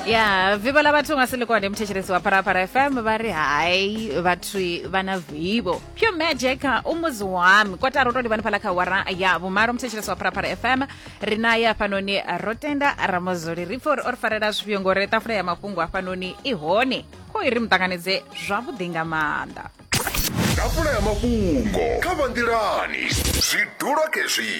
ya vivho ḽa vhathu nga silikwane muthetshelesi wa pharapara fm vha ri hai vhathu vha na vivho pure magic u muzi wami kotara u to livhani fhala kha wara ya vhumalo muthetshelesi wa pharapara fm ri na ya hafhanoni ro tenda ramozoli ri pfa uri o ri farela zwifhio ngori tafula ya mafhungo hafhanoni i hone kho i ri muṱanganedze zwavhuḓi nga maanḓa ḓafula ya mafhungo kha vha nḓilani zwi dula khezwi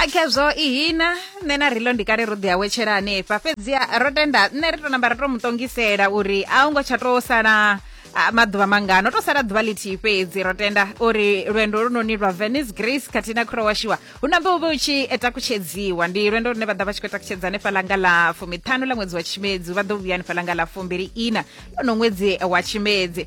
akhezwo ihina nṋe na rilo ndi kale ro ḓi awetshela hanefha fhedziha ro tenda nṋe ri to namba ri to mu tongisela uri a u ngo tsha to sala maḓuvha mangano to sala ḓuvha lithihi fhedzi ro tenda uri lwendo lunoni lwa venice grace khathihi na khura washiwa hu nambe u vhe u tshi takutshedziwa ndi lwendo lune vha ḓa vha tshi khou takutshedza hanefha langa ḽa fumiṱhanu ḽa ṅwedzi wa tshimedzi vha ḓo vhuya hanefha langa ḽa fumbili ina lono ṅwedzi wa tshimedzi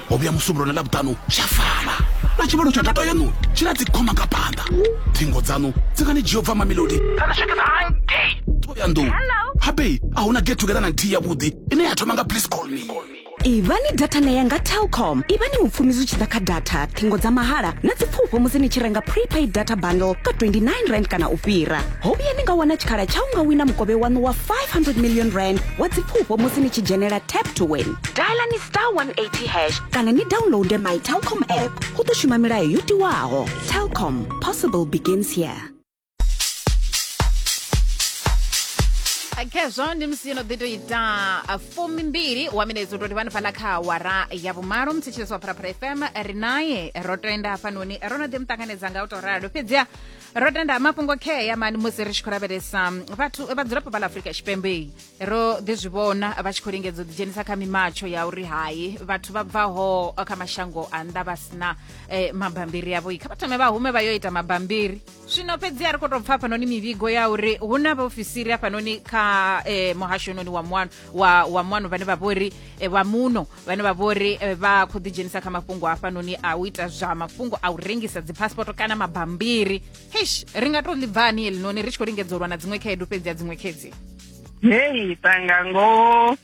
ho vhuya musumbulo na ḽavhuṱanu tsha fana na tshivhalo tsha data yaṋu tshi na dzikhoma nga phanḓa thingo dzaṋu dzi nga ni dzhia u bva mamelodi kana swikisa hangei ṱhoyandou habei a hu na get together na nthihi yavhuḓi ine ya thoma nga please call me ivhani data na ya nga telcom ivhani mupfumi zwi tshi ḓa kha data ṱhingo dza mahala na dzipfufho musi ni tshi renga prepaid data bundle ka 29 rand kana u fhira ho vhuya ni nga wana tshikhala tsha u nga wina mukovhe waṋu wa 500 million rand wa dzipfufho musi ni tshi dzhenela tap to win diala ni star 180 hash kana ni downloade my telcom app go tlo šoma melayo yo tiwago telcom possible begins here khezwo ndi musi yo no ḓi to ita uh, fumi mbili wa minetso toti vhani fhaḽa kha awara ya vhumalo muthetshelesi wa pharapara fm ri naye ro tenda hafhanoni ro no ḓi muṱanganedza nga u to ralo fhedziha ro tenda mafhungo khea mani musi ri tshi khou lavhelesa vhathu vhadzulapo vha ḽa afurika tshipembe ro ḓi zwi vhona vha tshi khou lingedza u ḓidzhenisa kha mimatsho ya uri hai vhathu vha bvaho kha mashango a nnḓa vha sina eh, mabambiri avho kha vha thome vha hume vha yo ita mabambiri zwino fhedzi a ri khou tou pfa hafhanoni mivhigo ya uri hu na vhaofisiri hafhanoni kha eh, muhasho noni wa muano wa, wa muano vhane vha vhori eh, vha muno vhane vha vhori eh, vha khou ḓidzhenisa kha mafhungo hafhanoni a u ita zwa mafhungo a u rengisa dzipaspoto kana mabambiri eish ri nga tou ḽi bva hani helinoni ri tshi khou lingedza u lwa na dziṅwe khaedu fhedzi ya dziṅwe khedzi hei tanga ngoho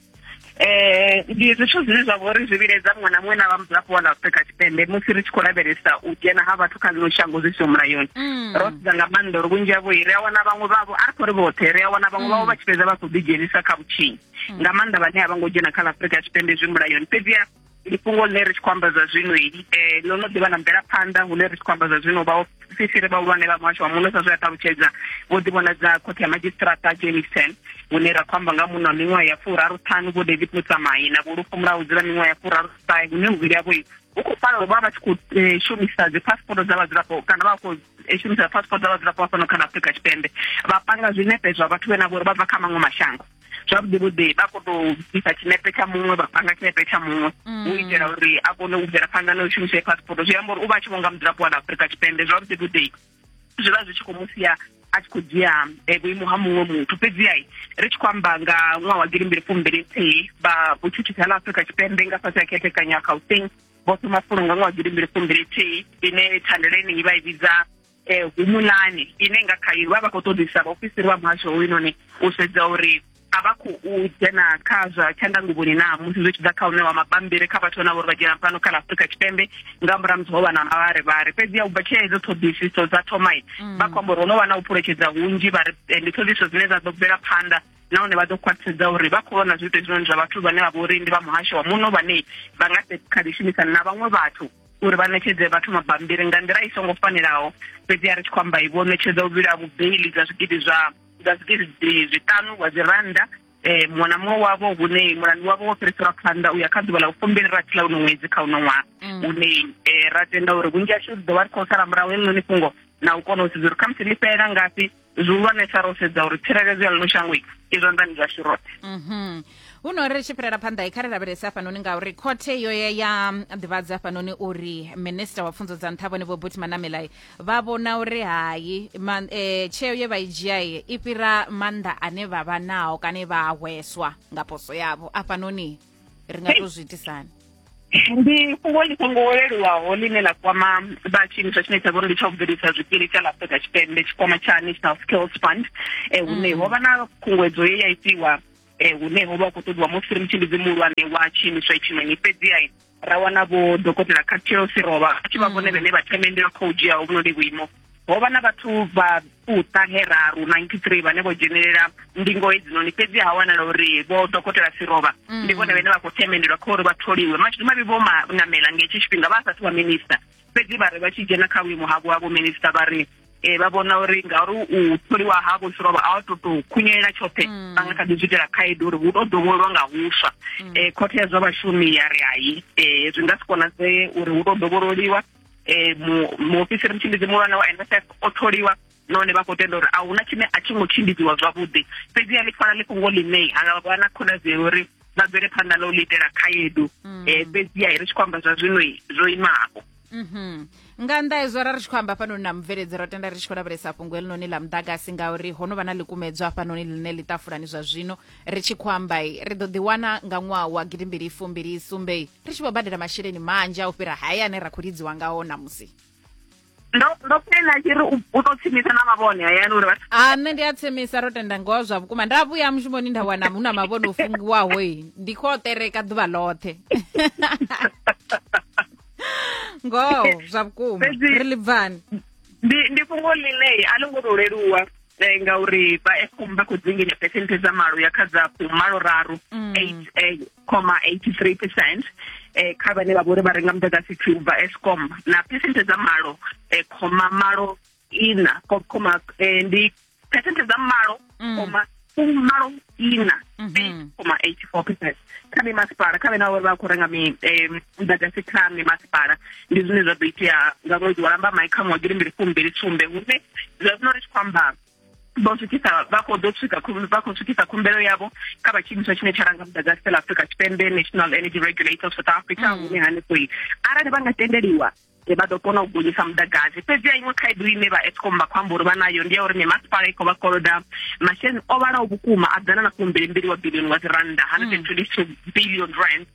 eh ndi zwithu zwine zwa vhori zwi vhiledza muṅwe na muṅwe na vha mudzulapo wa ḽa Afrika Tshipembe musi ri tshi khou lavhelesa u dzhena ha vhathu kha ḽino shango zwi siho mulayoni mm. ro sedza nga maanḓa uri vhunzhi havho ri a wana vhaṅwe vhavho a ri khou ri vhoṱhe ri a wana vhaṅwe vhavho mm. vha tshi fhedza vha khou ḓidzhenisa kha vhutshinyi mm. nga maanḓa vhane a vha ngo dzhena kha ḽa Afrika Tshipembe zwi mulayoni fhedziha ndi fhungo ḽine ri tshi khou amba zwa zwino um eh, ḽo no ḓivha na mvelaphanḓa hune ri tshi khou amba zwa zwino vhaofisi ri vhahulwane vha muhasho wa muno sa zwe a ṱalutshedza vho ḓivhonadza khothe ya madzhisiṱirata jameson hune ra khou amba nga muno wa miṅwaha ya furaru ṱhanu vho david mutsamai na vhulufho mulaho dzula miṅwaha ya furaru ṱahe hune muvhili yavho hu khou fana uri vha vha tshi khou eh, shumisa dzi passport dza vhadzulapo kana vha khou eh, shumisa passport dza vhadzulapo vha fano kha na afrika tshipembe vha panga zwinepe zwa vhathu vhe na vhori vha bva kha maṅwe mashango zwavhuḓi vhuḓi vha kho to isa tshinepe tsha muṅwe vha panga tshinepe tsha muṅwe mm. u itela uri a kone u bvela phanḓa na u shumisa passport zwi amba uri u vha a tshi vhonga mudzulapo wa afurika tshipembe zwavhuḓi vhuḓi zwi vha zwi tshi khou mu sia a tshi khou dzhia eh, vhuimo ha muṅwe muthu fhedziha ri tshi khou amba nga ṅwaha wa gidi mbili fumbili nthihi vha vhutshutshisi ha ḽa afurika tshipembe nga fhasi ya khethekanyo ya gauteng vho thoma fulo nga ṅwaha wa gidi mbili fumbili nthihi ine thandelo ine i vha i vhidza um humulani ine nga khayo vha vha khou ṱoḓisa vhaofisiri vha muhasho hoyunoni u sedza uri a vha khou dzhena kha zwa tshandanguvhoni na musi zwi tshi ḓa kha u ṋewa mabambiri kha vhathu vhana vhori vha dzhena fhano kha ḽa afurika tshipembe nga murahu musi ho vha na mavharivhari fhedzi ya u bva tshea hedzo ṱhoḓisiso dza thomai mm. vha khou amba uri ho no vha na u phuletshedza hunzhi vha ri eh, ndi ṱhoḓisiso dzine dza ḓo bvela phanḓa nahone vha ḓo khwaṱhisedza uri vha khou vhona zwiito hezwinoni zwa vhathu vhane vha vha uri ndi vha muhasho wa muno vhane vha nga kha ḓi shumisana na vhaṅwe vhathu uri vha ṋetshedze vhathu mabambiri nga nḓila i songo fanelaho fhedzi a ri tshi khou amba vho ṋetshedza u vhila vhubeili dza zwigidi zwa dza zwigidi zwiṱanu wa dzi rannda eh muṅwe na muṅwe wavho hune mulandu wavho wo fhiriselwa phanḓa u ya kha ḓuvha ḽa u fumbili rathi ḽa uno ṅwedzi kha uno ṅwaha mm. une eh, ra tenda uri vhunzhi hashu ri ḓo vha ri khou sala murahu heḽinoni fhungo na u kona u sedza uri khamusi ḽi fhelela ngafhi zwihulwanesa ro sedza uri tsireledzo ya ḽino shango i zwanḓani zwashu roṱhe mhm. huno ri tshi fhirela phanḓa i kha ri lavhelese hafhanoni ngauri khothe yo ya ya ḓivhadza hafhanoni uri minista wa pfunzo dza nṱha vhone vho buti manamelai vha vhona uri hayi e, tsheo ye vha i dzhia i fhira maanḓa ane vha vha nao kana vha hweswa nga poso yavho afhanoni ri nga to zwi itisani ndi fhungo ḽi songo leluwaho ḽine ḽa kwama vha tshiimiswa tshine tsha vhori ndi tsha u bvelisa zwikili tsha ḽa afrika tshipembe tshikwama tsha national skills fund um hune ho vha na khunguwedzo ye ya itiwa um hune ho vha hu khou ṱoḓiwa musi ri mutshimbizi muhulwane wa tshiimiswa itshinoni fhedziha ra wana vho dokotela khathirosi rovha a tshi vha vhone vhene vha themendela khou dzhiaho vhunoni vhuimo ho vha na vhathu vha fuṱa heraru 93 vhane vho dzhenelela ndingo hedzinoni fhedzi ha wanala uri vho dokotela sirova mm. ndi vhone vhene vha khou themendelwa kha uri vha tholiwe mashudu mavhi vho manamela nga hetshi tshifhinga vha asathu vha minista fhedzi vha ri vha tshi dzhena kha vhuimo havho ha vhominista vha ri um vha vhona uri ngauri u tholiwa havho sirova a wa to to khunyelela tshoṱhe mm. vha nga kha ḓi zwi itela khaedu uri hu to dovholwa nga huswa um khothe ya zwa vhashumi ya ri hai um zwi nga si konadzee uri hu to dovhololiwa eh, mu muofisiri mutshimbidzi muhulwane wa NSF o tholiwa nahone vha khou tenda uri a huna tshine a tshi ngo tshimbidziwa zwavhuḓi fhedziha ḽi fana ḽi fhungo ḽine ha nga vha na khonadzeo uri vha bvele phanḓa na u ḽi itela khaedu um fhedziha ri tshi khou amba zwa zwino zwo imaho mhm. nga nnḓa hezwo ra ri tshi khou amba hafhanoni na mubveledzi ro tenda ri tshi khou lavhelesa fhungo heḽinoni ḽa muḓagasi ngauri ho no vha na ḽikumedzwa hafhanoni ḽine ḽi ṱafulani zwa zwino Ri tshi khou amba, ri ḓo ḓiwana nga ṅwaha wa gidimbili fumbili sumbe ri tshi vho badela masheleni manzhi a u fhira haya ane ra khou lidziwa ngao ṋamusi. ndo ndo pena tshi ri u ḓo tsimisa na mavhone hayani uri vhathu a nṋe ndi a tsemisa ro tenda ngoho zwa vhukuma nda vhuya mushumoni nda wana hu na mavhone o fungiwaho i ndi khou o tereka ḓuvha ḽoṱhe ngoho zwa vhukuma Fhedzi- ri ḽi bvani ndi ndi fhungo ḽine a ḽo ngo to leluwa eh, ngauri vha Eskom vha khou dzinginya phesenthe dza malo ya kha dza fumalo raru 8,83 mm. eh, percent eh, kha vhane vha vhori vha renga muḓagasi thwini vha Eskom na phesenthe dza malo eh, khoma malo ina khoma eh, ndi phesenthe dza malo mm. khoma fumalo ina mhm. koma eighty four percent kha mimasipala kha vhena uri vha khou renga muḓagasi kha mimasipala ndi zwine zwa ḓo itea nga ṅwedzi wa lamba mai kha ṅwedzi ndi mbili fumbili sumbe hune zwa zwino ri tshi khou amba vho swikisa vha khou ḓo swika vha khou swikisa khumbelo yavho kha vha tshiimiswa tshine tsha ranga muḓagasi fela afrika tshipembe national energy regulator of south africa mm. hune hanefhoi arali vha nga tendeliwa vha ḓo kona u gonyisa muḓagasi fhedzi a iṅwe khaedu ine vha escom vha khou amba uri vha nayo ndi ya uri mimasipala i khou vha koloda masheleni o vhalaho vhukuma a ḓana na fumbilimbili wa bilioni wa dzi rannda hundred and twenty two billion rand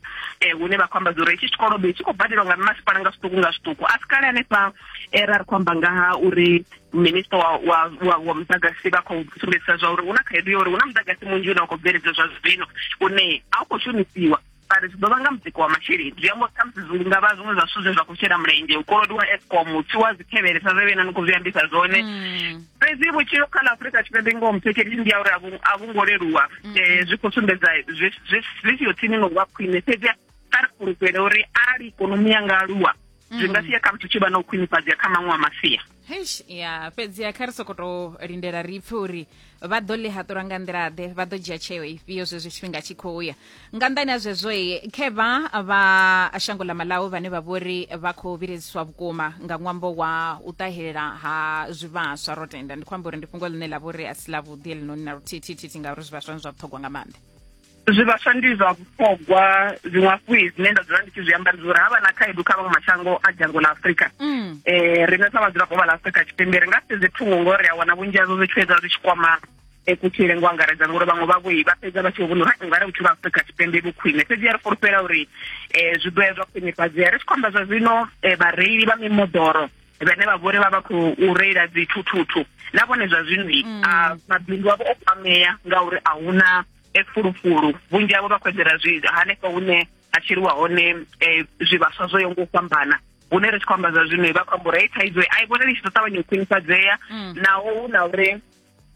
um hune vha khou amba zwauri hetshi tshikolodo tshi khou badeliwa nga mimasipala nga zwiṱuku nga zwiṱuku a si kale hanefha eh, ra ri khou amba nga ha uri minista wa, wa, wa, wa muḓagasi vha khou sumbedzisa zwa uri hu na khaedu ya uri hu na muḓagasi munzhi une wa khou bveledzwa zwa zwino une a u khou shumisiwa vhari zwi ḓo vha nga mutsiko wa masheleni zwi amba uri khamusi zwi nga vha zwiṅwe zwa zwithu zwe zwa khou shela mulenzhe u kolodiwa escom u tswiwa dzikhevhele sa zwe vhena ni khou zwi ambisa zwone mm. fhedzi vhutshilo kha ḽa afrika tshipembe ngoho muthetshelisi ndi ya uri a vhu ngo leluwa um zwi khou sumbedza zwi siyo tsini no vha khwine fhedzi kha ri fhulufhele uri arali ikonomi ya nga aluwa zwi nga mm. sia khamusi u tshi vha na u khwinifhadzea kha maṅwe a masia heish ya fhedziha kha ri sokoto lindela ri pfe uri vha ḓo ḽi haṱulwa nga nḓilaḓe vha ḓo dzhia tsheo ifhio zwezwi tshifhinga tshi khou ya nga nḓani ha zwezwo khevha vha shango ḽa malawi vhane vha vhori vha khou vhiledziswa vhukuma nga ṅwambo wa u ṱahelela ha zwivhaswa ro tenda ndi khou amba uri ndi fhungo ḽine ḽa vhori a si ḽavhuḓi heḽinoni na luthithithithi ngauri zwivhaswa ni zwa vhuṱhogwa nga maanḓa zwivhaswa ndi zwa vhuṱhogwa zwiṅwe hafhu zwine nda dzula ndi tshi zwi amba ndi uri ha vha na khaedu kha vhaṅwe mashango a dzhango ḽa afurika um riṋe sa vhadzulapo vha ḽa afurika tshipembe ri nga sedze thungo ngo ri a wana vhunzhi hazwo zwi tshi fhedza zwi tshi kwama eh, kutshile ngo angaredza ngori vhaṅwe vhavho vha fhedza vha tshi vho vhona uri ungari vhutshilo ha afurika tshipembe vhu khwine fhedzi ya ri fulufhela uri um zwi ḓo ya zwa khwinifhadzea ri tshi khou amba zwa zwino um vhareili vha mimoḓoro vhane vha vhori vha vha khou reila dzithuthuthu na vhone zwa zwino a mabindu avho o kwamea ngauri a huna e fulufulu vhunzhi havho vha khou eḓela zwi hanefho hune ha tshiliwa hone um zwivhaswa zwo yo ngo u fhambana hune ri tshi khou amba zwa zwino vha khou amba uri hei thaidzo a i vhoneli tshi ḓo ṱavhanya u khwinifhadzea mm. naho hu na uri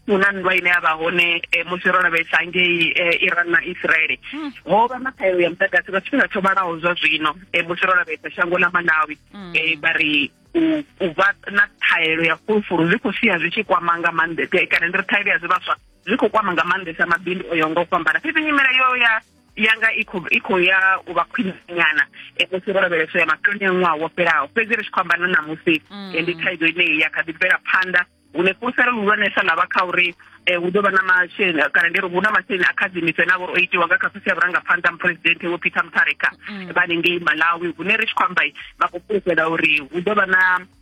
hu na nndwa ine ya vha hone eh, musi ro lavhelesa ngei eh, iran na israele hmm. ho vha na ṱhaelo ya muḓagasi nga tshifhinga tsho vhalaho zwa zwino eh, musi ro lavhelesa shango ḽa malawi hmm. vha ri u vha na ṱhaelo ya fulufulu zwi khou sia zwi tshi kwama nga maanḓa kana ndi ri ṱhaelo ya zwivhaswa zwi khou kwama nga maanḓesa mabindu o yaho nga u fhambana fhedzi nyimele yo ya yanga i khou i khou ya u vha khwiṋanyana musi ro lavheleswa ya maṱoni a ṅwaha wo fhelaho fhedzi ri tshi khou amba na ṋamusi mm. ndi thaidzo ine ya kha ḓi bvela phanḓa hune fhulufhelo luhulwanesa ḽa vha kha uri Eh, hu ḓo vha na masheleni eh, kana ndi ri hu na masheleni a khadzimiso ane a vha o itiwa nga kha khosi ya vhurangaphanḓa muphuresidenthe vho peter mutharika mm. vhanengei malawi hune ri tshi khou amba vha khou fhulufhela uri hu ḓo vha na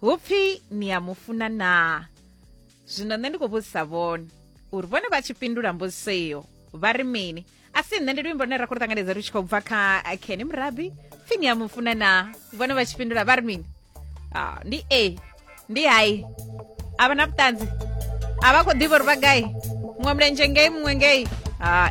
hupfi ni ya mufuna naa zwino nṋe ndi khou vhudzisa vhone uri vhone vha tshi fhindula mbudziso iyo vha ri mini a si nṋe ndi luimbo lune ra khou ṱanganedza lu tshi khou bva kha keni murabi pfi ni ya mufuna naa vhone vha tshi fhindula vha ri mini ah, ndi a ndi hai a vha na vhuṱanzi a vha khou ḓivha uri vha gai muṅwe mulenzhe ngei muṅwe ngei hai